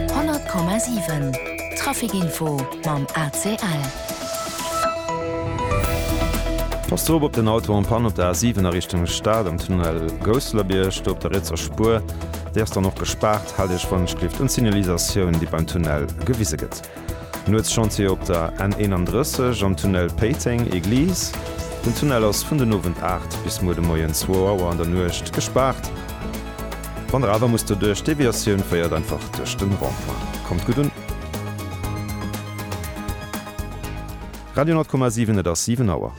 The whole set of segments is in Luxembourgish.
100,7 Traficinfo mam ACL. Pass drop op den Auto en Panne op der A7 a Richtung Stad am Tunnel Gousselerbierg, do op der rietser Spuer, déi ass dann och gespaart. Haalt Iech wann et schléift un d'Signalisatioun, déi beim Tunnel gewise gëtt. Nuetschantier op der N 31 am Tunnel Péiteng, Église. Den Tunnel ass vun den Owend 8 bis muer de Moien 2 Auer an der Nuecht gespaart. Wann der awer musst doduerch, d'Deviatioun féiert einfach duerch den Rond-point. Kommt gutt un! Radio 10,7 Et ass 7 Auer.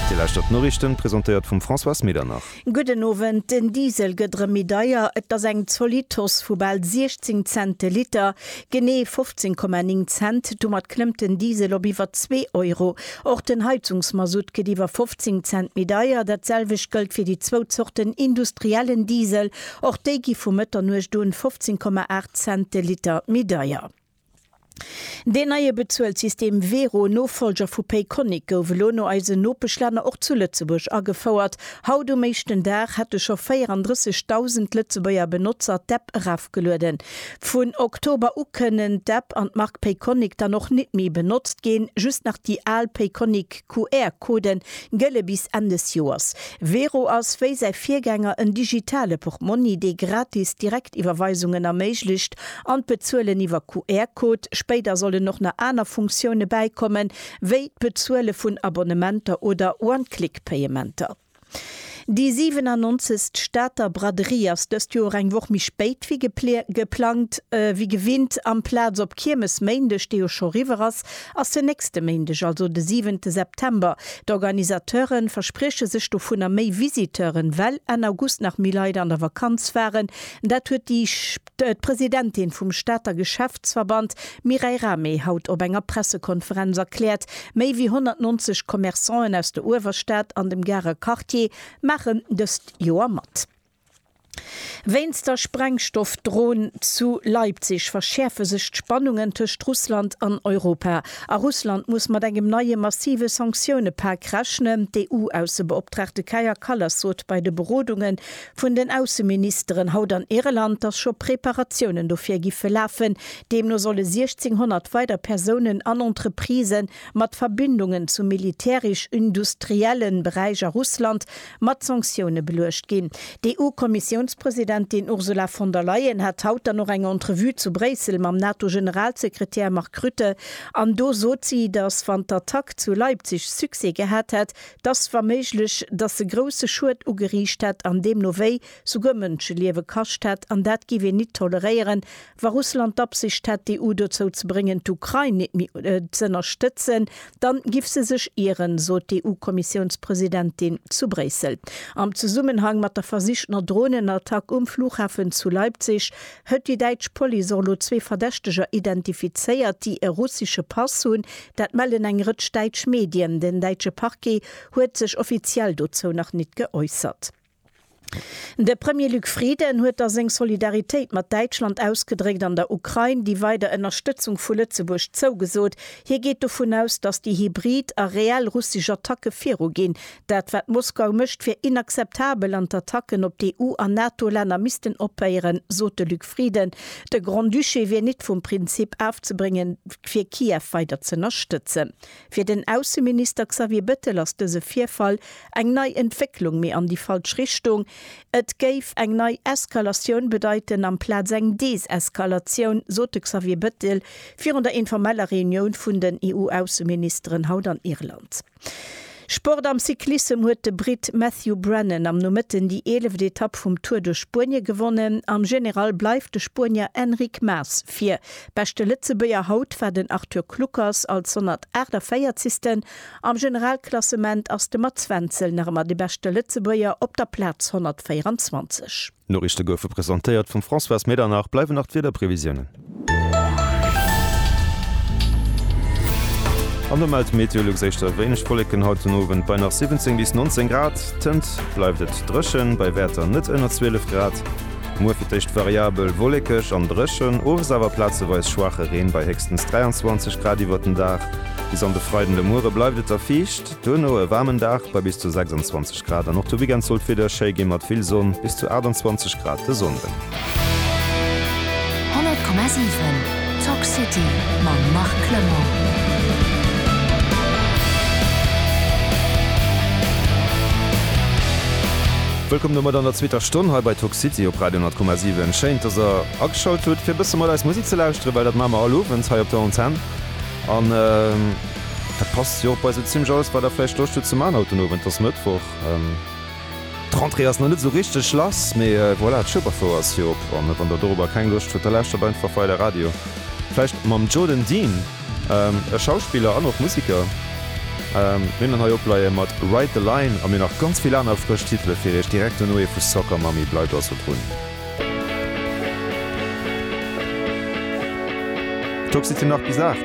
Dir lauschtert d'Noriichten, presentéiert vum Françoise Medernach. Gudden Owend, den Diesel gëtt erëm méi deier. Et ass eng zolidd Hausse vu bal 16 Cent de Liter, genee 15,9 Cent. Domat klëmmt den Diesel op iwwer zwee Euro. Och den Heizungsmasutt gëtt iwwer 15 Cent méi deier. Dat selwecht gëllt fir déi zwou Zorten industriellen Diesel. Och déi gi vu Mëtternuecht un 15,8 Cent de Liter méi deier. Deen neie Bezuelssystem Wero, Nofollger vu Payconiq, gouf elo no eisen Nopeschlänner och zu Lëtzebuerg agefouert. Haut um éischten Dag hätte scho 34.000 Lëtzebuerger Benotzer d'App erafgelueden. Vun Oktober u kënnen d'App an d'Mark Payconiq dann och nit méi benotzt ginn, just nach déi al Payconiq. QR-Coden gëlle bis Enn des Joers. Wero ass wéi säi Virgänger en digitale Portmonni, dee gratis Direktiwwerweisungen erméiglecht an d'Bezuelen iwwer QR-Code. Spéider sollen och nach aner Funktioune bäikommen, wéi d'Bezuele vun Abonnementer oder One-Click-Payementer. Déi 97. Stater Braderie ass dëst Joer eng Woch méi spéit wéi geplangt. Wéi gewinnt amplaz op Kiermesméindeg, dee jo scho riwwer ass, ass den nächste Méindeg, also de 7 September. D'Organisateure versprieche sech dovunner méi Visiteuren, well Enn August nach méi Leit an der Vakanz waren. Dat huet déi. D'Presidentin vum Stater Geschäftsverband Mireille Rahmé haut op enger Pressekonferenz erkläert. Méi wéi 190 Commerçanten aus der Uewerstad an dem Garer Quartier maachen dëst Joer mat. Wéinst der Sprengstoffdrohn zu Leipzig verschäerfe sech d'Spannungen tëscht Russland an Europa. A Russland muss mat engem neie massive Sanktioune-Pak rechnen. D'EU-Aussebeoptraagte Kaja Kallas sot bei de Berodunge vun den Ausseministeren haut an Irland, dass scho Preparatiounen dofir giffe lafen. Deemno solle 1.600 weider Persounen an Entreprisë mat Verbindungen zum militärisch-industrielle Beräich a Russland mat Sanktioune beluecht ginn. D'EU-Kommissiounspresidentin Ursula von der Leyen hat haut dann och eng Entrevue zu Bréissel mam NATO-Generalsekretär Mark Rutte an do sot si, dass wann d'Attack zu Leipzig Succès gehat hätt, T'ass wa méiglech, dass se grousse Schued ugeriicht hätt an deemno wéi souguer Mënscheliewe kascht hätt, an dat giff een nit toleréieren, wa Russland d'Absicht hätt d'EU dozou ze bréngen d'Ukrain nit méi z'ënnerstëtzen, dann giff se sech ieren, sot d'EU-Kommissiounspresidentin zu Bréissel am Zesummenhang mat der versichtener Dronenattack um Flughafen zu Leipzig, Huet déi däitsch Police och elo zwee Verdächteger identifizéiert, déi e russesche Pass hunn. Dat mellen eng Rëtsch däitsch Medien. Den däitsche Parquet huet sech offiziell dozou nach nit geäussert. De Premier Luc Frieden huet da seng Solidaritéit mat Däitschland ausgedréckt an der Ukrain déi weider Ënnerstëtzung vu Lëtzebuerg zougesot. Hie geet dovun aus, datt déi hybrid a reell russesch Attacke viruginn. Dat wat Moskau mécht wier inakzeptabel an d'Attacken op d'EU an NATO-Länner missten ophéieren, sot de Luc Frieden. De Grand-Duché wier nit vum Prinzip afzebréngen, fir Kiew weider z'ënnerstëtzen. Fir den Ausseminister Xavier Bettel ass dëse Virfall eng nei Entwécklung, mee an déi falsch Richtung. Et géif eng nei Eskalatioun bedeiten amplaz eng Deseskalatioun, sot de Xavier Bettel virun der informeller Reunioun vun den EU-Ausseministeren haut an Irland. Sport am Cyclissem huet de Britt Matthew Brennan am Nomëtten déi eeleft Etapp vum Tour duerch Spuenie gewonnen. Am General bleift de Spuenier Enric Mas vir. Beschte Lëtzebuerger haut war den Arthur Kluckers als 148. Am Generalklassement ass de Mats Wenzel nach ëmmer de beschte Lëtzebuerger op der Plaz 124. D'Noriichte goufe presentéiert vum Françoise Medernach. Bleiwen nach d'Wiederprevisiounen. An do mellt Meteolux éischter wéineg Wolleken haut den Owend bei nach 17 bis 19 Grad. Tënt bleift et dréchen, bei Wäerter net ënner 12 Grad. Muer fir d'éischt variabel wollekeg an dréchen, owes awer plazeweis schwaache Reen bei héchstens 23 Grad iwwert den Dag. Bis an de Freiden de Muere bleift et da fiicht. Duerno e waarmen Dag bei bis zu 26 Grad an och de Weekend sollt d'Wieder schéi ginn, mat vill Sonn, bis zu 28 Grad de Sonnden. 100,7 Talk City mam Marc Clement. Wëllkomm domat an der zweeter Stonn hei bei Talk City op Radio 100,7. Schéin, dass der ageschalt hutt fir e bësse mat eis Musek ze lauschteren, well dat maache mer all Owend hei op der Antenn an. Dat passt jo och bei sou zimmlech alles wat der vläicht Loscht hutt ze man haut den Owend. Et ass Mëttwoch, d'Rentrée ass nach net sou richteg lass, mee voilà, d'Schueberfouer ass jo op. An wann der doropper keng Loscht hutt, da lauschtert einfach weider Radio, vläicht mam Joe den Dean, e Schauspiller an och Museker. Mir hunn en hei opleie mat Ride the Line a mir hunn nach ganz vill aner frësch Titele fir iech. Direkt dono ee vu Soccer Mommy. Bleift also drun. D'Toxicity nach bis 8.